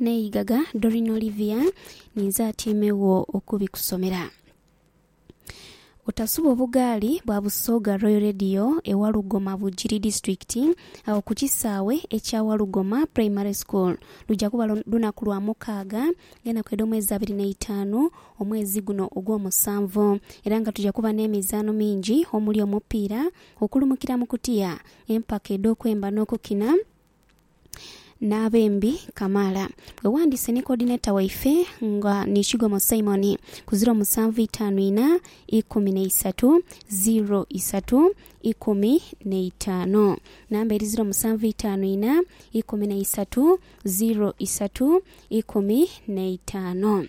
n'eigaga Dorin Olivia ninze atyeimegho okubikusomera. Otasuba obugaali bwa Busoga Royal Radio e Walugoma Bugiri Disiturikiti agho ku kisaawe ekya Walugoma Primary School luja kuba lunaku lwa mukaaga gh'enaku edh'omwezi abiri n'eitaanu omwezi guno ogwomusanvu era nga tuja kuba n'emizaano mingi omuli omupiira, okulumukira mu kutiya, empaka edh'okwemba n'okukina. n'abembi kamaala. Bwe ghandiise ni Coordinator waife nga ni Kigomo Simon ku ziro musanvu itaanu inha ikumi na isatu ziro isatu ikumi na itaanu. Namba eri ziro musanvu itaanu inha ikumi na isatu ziro isatu ikumi na itaanu.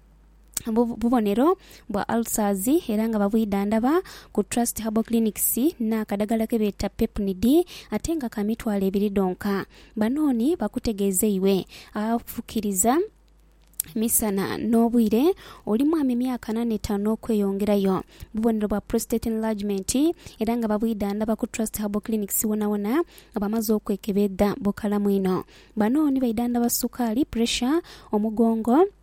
bubonero bwa ulcers era nga babwidhandhaba ku Trust Herbal Clinics n'akadagala ke beeta Pepnid ate nga ka mitwalo ebiri dhonka. Banooni bakutegeeza iwe afukiriza misana n'obwire, oli mwami myaka ana n'etaanu n'okweyongerayo, bubonero bwa prostate enlargement era nga babwidhandhaba ku Trust Herbal Clinics wonawona nga bamaze okwekebedha bukalamu inho. Banooni baidhandhaba sukaali, pressure, omugongo,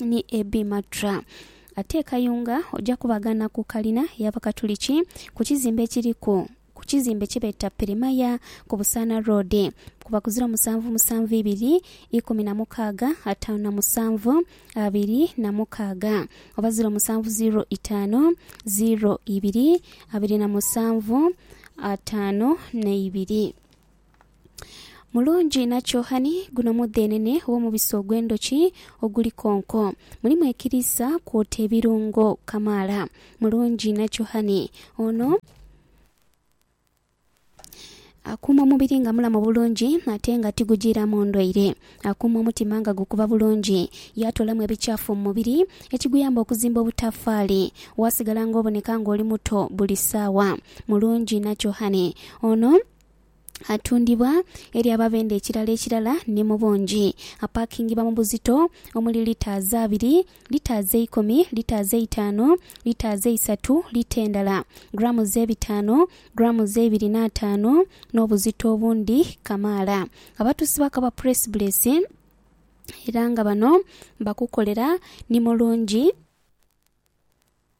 ni Abbey Matra. Ate e Kayunga oja kubagana ku kalina y'Abakatuliki ku kizimbe ekiri ku ku kizimbe kye beeta Pirimaya ku Busaana Road ku bakuzira omusanvu musanvu ibiri ikumi na mukaaga ataanu na musanvu abiri na mukaaga oba ziro musanvu ziro itaanu ziro ibiri abiri na musanvu ataanu na ibiri. Mulungi nakyo honey, guno mudheenene ow'omubisi ogw'endhoki oguli konko. Mulimu ekiriisa kwota ebirungo kamaala. Mulungi nakyo honey, ono akuuma omubiri nga mulamu bulungi ate nga tigujiiramu ndwaire. Akuuma omutima nga gukuba bulungi, yaatoolamu ebikyafu mu mubiri ekiguyamba okuzimba obutafaali waasigala ng'oboneka ng'oli muto buli saawa. Mulungi nakyo honey, ono Atundibwa eri ababenda ekirala ekirala ni mu bungi. Apakingibwa mu buzito omuli litres abiri, litres eikumi, litres eitaanu, litres eisatu, lita endala, grams ebitaanu, grams eibiri n'ataanu n'obuzito obundi kamaala. Abatuusi bakaba Press Bless era nga bano bakukolera ni mulungi.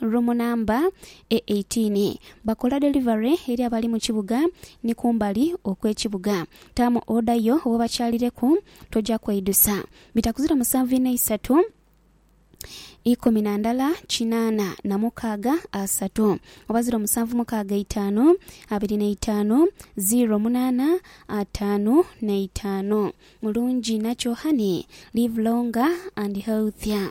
Rumu namba e eighteen. Bakola delivery eri abali mu kibuga ni kumbali okw'ekibuga. Taamu oda yo w'obakyalireku, toja kweidusa. Bitakuzira musanvu ina isatu ikumi na ndala kinaana na mukaaga asatu oba ziro musanvu mukaaga eitaanu abiri na itaanu ziro munaana ataanu na itaanu. Mulungi inakyo honey. Live longer and healthier.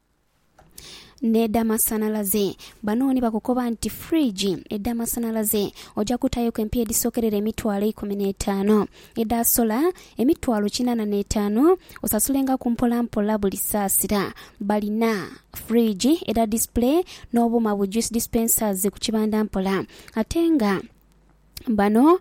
n'edh'amasanhalaze. Bano ni bakukoba nti fridge edh'amasanhalaze oja kutaayoku empiiya edhisokerera emitwalo eikumi n'etaanu. Edha sola emitwalo kinaana n'etaanu, osasulengaku mpolampola buli saasira. Balina fridge edha display n'obuuma bu juice dispensers ku kibanda mpola ate nga. Bano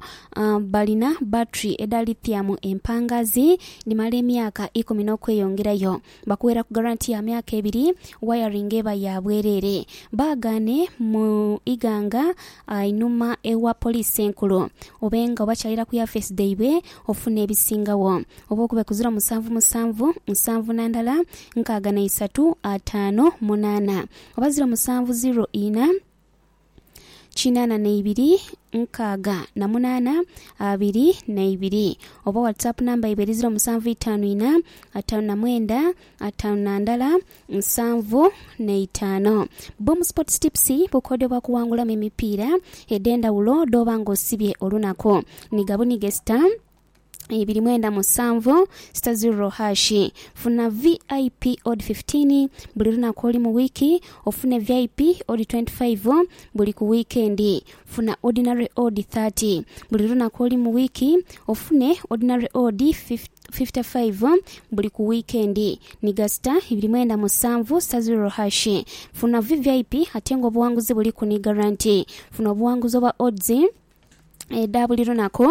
balina battery edha lithium empangazi dhimala emyaka ikumi n'okweyongerayo. Bakuweraku garanti ya myaka ebiri, wayaringi eba ya bwereere. Baagaane mu Iganga einhuma ewa Poliisi Enkulu. Obe nga obakyalira ku yafeesi dhaibwe ofuna ebisingagho. Oba okube ku ziro musanvu musanvu nsanvu na ndala nkaaga na isatu ataanu munaana oba ziro musanvu ziro ina, kinana na ibiri nkaaga na munana abiri na ibiri oba whatsapp number yaibwe eri ziro musanvu itaanu ina ataanu na mwenda ataanu na ndala nsanvu na itaano Boom Sports Tips bukodyo bwa kuwangulamu emipiira edh'endhawulo dh'oba ng'osibye olunaku. Nigha bunighe star ibiri mwenda musanvu sita ziro hashi funa vip odi 15 buli lunaku oli mu wiiki ofune vip odi 25 buli ku wiikendi funa ordinary odi 30 buli lunaku oli mu wiiki ofune ordinary odi 55 buli ku wiikendi ni gasita ibiri mwenda musanvu sita ziro hashi funa vvip ate nga obuwanguzi buliku ni garanti funa obuwanguzi obwa odds edha buli lunaku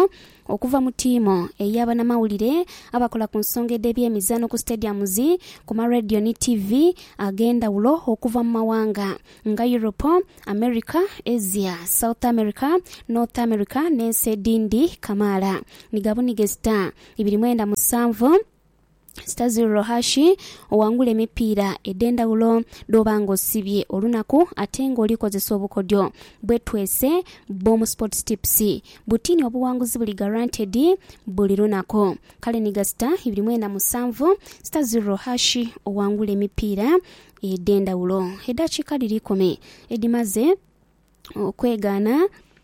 okuva mu tiimu eya banamawulire abakola ku nsonga edh'ebyemizaano ku stadiums, ku ma radio ni tiivi ag'endhawulo okuva mu mawanga nga Europe, America, Asia, South America, North America n'ensi edhindi kamaala. Ni gabunige sita ibiri mwenda musanvu. Stazir Rohashi owangula emipiira edh'endhawulo dh'oba ng'osibye olunaku ate ng'oli kozesa obukodyo bwetwese bw'omu Sports Tips. Butini obuwanguzi buli guaranteed buli lunaku. Kale ni gasita ibiri mwenda musanvu Stazir Rohashi owangula emipiira edh'endhawulo. Edhakiika dhiri ikumi edhimaze okwegaana.